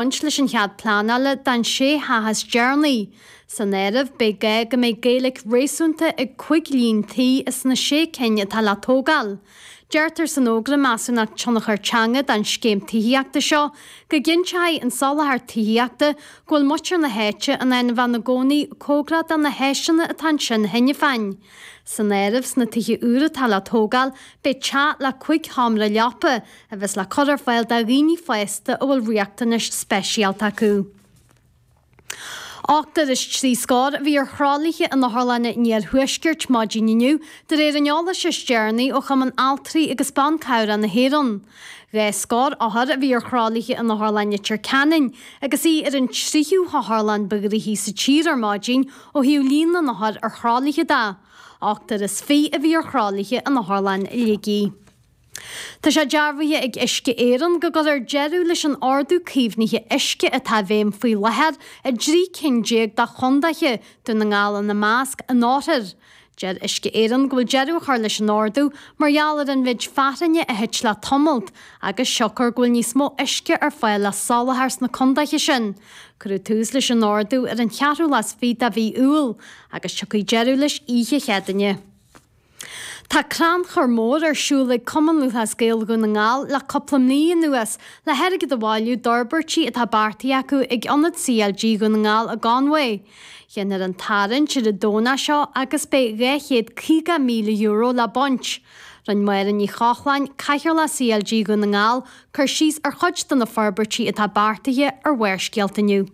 baint leis an chead pleanála don sé theach is deireanaí. San áireamh beidh gá go mbeidh Gaeilig réasúnta ag cúig líon tí as na sé cinn atá le tógáil. Deirtear san Fhógra Measúnachta Tionchar Teanga don scéim tithíochta seo go gcinnteoidh an soláthar tithíochta go bhfuil muintir na háite in ann a bheith ina gcónaí cóngarach do na háiseanna atá ansin cheana féin. San áireamh sna tithe úra atá le tógáil beidh teach le cúig sheomra leapa, a bheas le cur ar fáil do dhaoine fásta a bhfuil riachtanais speisialta acu. Ochtar is trí scór a bhí ar thralaithe in Otharlanna an Iarthuaiscirt maidin inniu, de réir an eolais is deireanaí ó Chumann Altraí agus Ban Cabhrach na hÉireann. Dhá scór othar a bhí ar thralaithe in Otharlann Leitir Ceanainn agus í ar an tríú hotharlann ba ghnoithí sa tír ar maidin ó thaobh líon na n-othar ar thralaithe de. Ochtar is fiche a bhí ar thralaithe in Otharlann Shligigh. Tá sé dearbhaithe ag Uisce Éireann go gcuirfear deireadh leis an ordú caomhnaithe uisce atá i bhfeidhm faoi láthair i dtrí cinn déag de chondaetha, Dún na nGall ina measc, anóirthear. Deir Uisce Éireann go bhfuil deireadh á chur leis an ordú mar gheall ar an mhéid fearthainne a thit le tamallt agus siocair go bhfuil níos mó uisce ar fáil le soláthar sna condaetha sin. Cuireadh tús leis an ordú ar an cheathrú lá is fiche de mhí Iúil agus tiocfaidh deireadh leis oíche Chéadaoine. Tá crannchur mór ar siúl ag Cumann Lúthchleas Gael Dhún na nGall le cúpla mí anuas le hairgead a bhailiú d'fhorbairtí atá beartaithe acu ag Ionad CLG Dhún na nGall i gConmhaigh. Déanfar an tarraingt ar an Domhnach seo agus beidh €250,000 le baint. Rinn Máire Ní Chochláin, Cathaoirleach CLG Dhún na nGall, cur síos ar chuid de na forbairtí atá beartaithe ar Bharrscéalta inniu.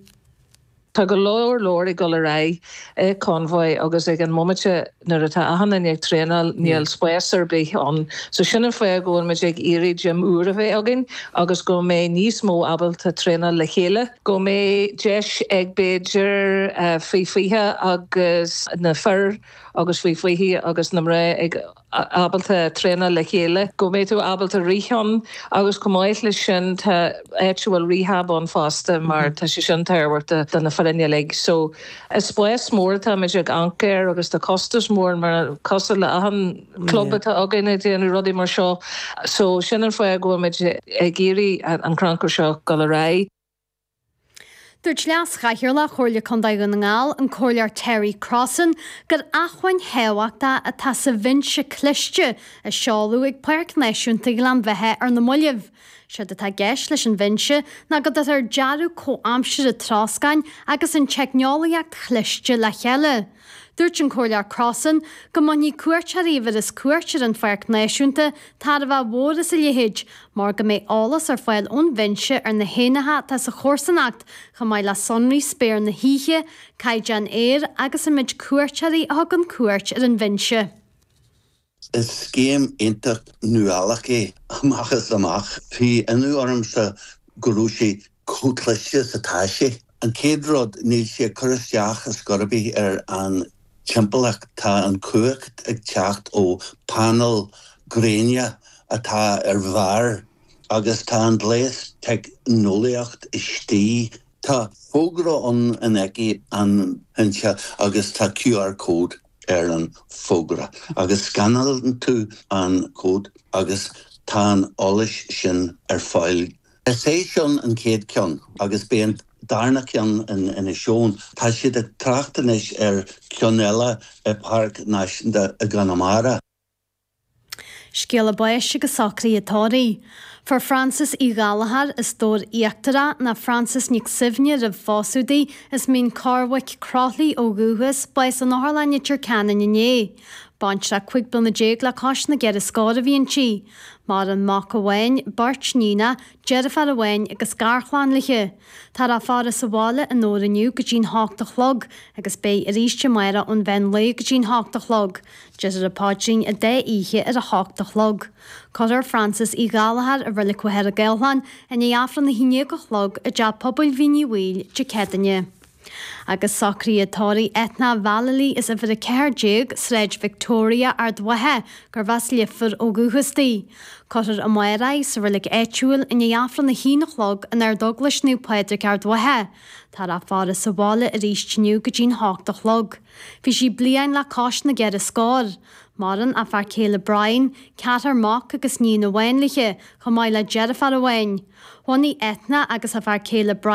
Tá go leor leor ag dul ar aghaidh i Conmhaigh agus ag an mbomaite nuair atá achan duine ag traenáil níl spás ar bith ann so sin an fáth go bhfuil muid ag iarraidh gym úr a bheith againn agus go mbeidh níos mó ábalta traenáil le chéile, go mbeidh deis ag b'fhéidir faoi 20 agus na fir agus faoi 20 agus na mná ag. ábalta traenáil le chéile, go mbeidh tú ábalta rith ann agus chomh maith leis sin tá áit a bhfuil rehab ann fosta mar tá sé sin tábhachtach do na foirne uilig so is spás mór atáimid ag amharc air agus tá costas mór mar cosúil le achan club atá againn ag déanamh rudaí mar seo so sin an fáth go bhfuilmid ag iarraidh an crannchur seo dul ar aghaidh. Dúirt Leas-Chathaoirleach Chomhairle Contae Dhún na nGall, an Comhairleoir Terry Crossan, gur acmhainn thábhachtach atá sa bhinse cliste a seoladh ag Páirc Náisiúnta Ghleann Bheithe ar na mallaibh. Is éard atá i gceist leis an bhinse ná go dtugtar dearadh comhaimseartha troscáin agus an teicneolaíocht chliste le chéile, Dúirt an Comhairleoir Crossan go mbainfidh cuairteoirí a bheireas cuairt ar an Pháirc Náisiúnta tairbhe mhór as a leithéid, mar go mbeidh eolas ar fáil ón Bhinse ar na héanlaithe atá sa chomharsanacht chomh maith le sonraí spéir na hoíche, caighdeán aeir agus an méid cuairteoirí a thugann cuairt ar an Bhinse. Is scéim iontach nuálach é amach is amach. Bhí ionadh ormsa go raibh sé chomh cliste is atá sé. An chéad rud, níl sé ag cur isteach ar scor ar bith ar an timpeallacht. Tá an chumhacht ag teacht ó phainéil ghréine atá ar bharr agus tá an gléas teicneolaíocht istigh. Tá fógra ann in aice an bhinse agus tá QR code. ar an bhfógra agus scanálann tú an cód agus tá an eolas sin ar fáil. Is é seo an chéad cheann agus beidh an darna ceann in Inis Eoghain. Tá siad ag trácht anois ar cheann eile i bPáirc Náisiúnta i gConamara. Scéala báis agus socruithe tórraimh. Fuair Frances Uí Ghallchóir as Dobhar Íochtarach, nó Frances Nic Suibhne roimh phósadh di, as Mín Corrbhaic, Croithlí ó dhúchas, bás in Otharlann Leitir Ceanainn inné. Baintreach cúig bliana déag le cois na gceithre scór a bhí inti. Maireann mac amháin, beirt níonach, deirféar amháin agus garchlann léithe. Táthar á faire sa bhaile i nDobhar inniu go dtí'n h-ocht a chlog agus beidh arís amárach ón mheán lae go dtí'n h-ocht a chlog. Déarfar an paidrín an dá oíche ar a h-ocht a chlog. Cuirfear Frances Uí Ghallchóir i Reilig Mhachaire Gathlán i ndiaidh Aifreann a haon déag a chlog i dTeach Pobail Mhín Uí Bhaoill Dé Céadaoine. Agus socruithe tórraimh Eithne Vallely as uimhir 14 Sráid Victoria, Ard Mhacha, gurbh as Leifear ó dhúchas di. Cuirfear amárach í sa reilig áitiúil i ndiaidh Aifreann a haon a chlog in Ardeaglais Naomh Pádraig, Ard Mhacha. Táthar á faire sa bhaile aríst inniu go dtí'n hocht a chlog. Bhí sí bliain le cois na gceithre scór. Maireann a fear céile Brian, ceathrar mac agus níon amháin léithe, chomh maith le deirféar amháin. Bhunaigh Eithne agus a fear céile Brian.